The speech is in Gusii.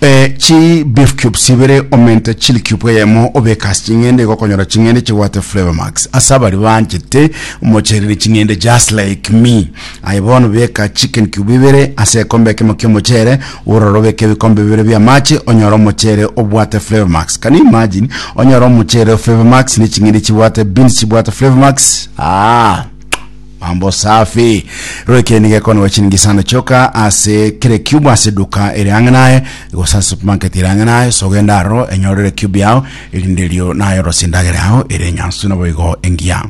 E chi beef cubes ibere omente chili cube eyemo obeke ase ching'ende igokonyora ching'ende chibwate flavor max ase abari banchete omochereri ching'ende just like me aye bono beka chicken cube ibere ase ekombe ekemo kiomochere ororo obeke ebikombe bibere bia amache onyore omochere obwate flavor max can you imagine onyore omochere flavor max ne ching'ende chibwate beans chibwate flavor max ah Mambo safi. Roike nigo ekonigwa chiringi isano chioka ase kera ecube ase eduka ere ang'e naye gose ase supermarket ere ang'e naye so genda aroro enyorere ecube yao erinde erio naye orose endagera yao ere enyansu naboigo engiya.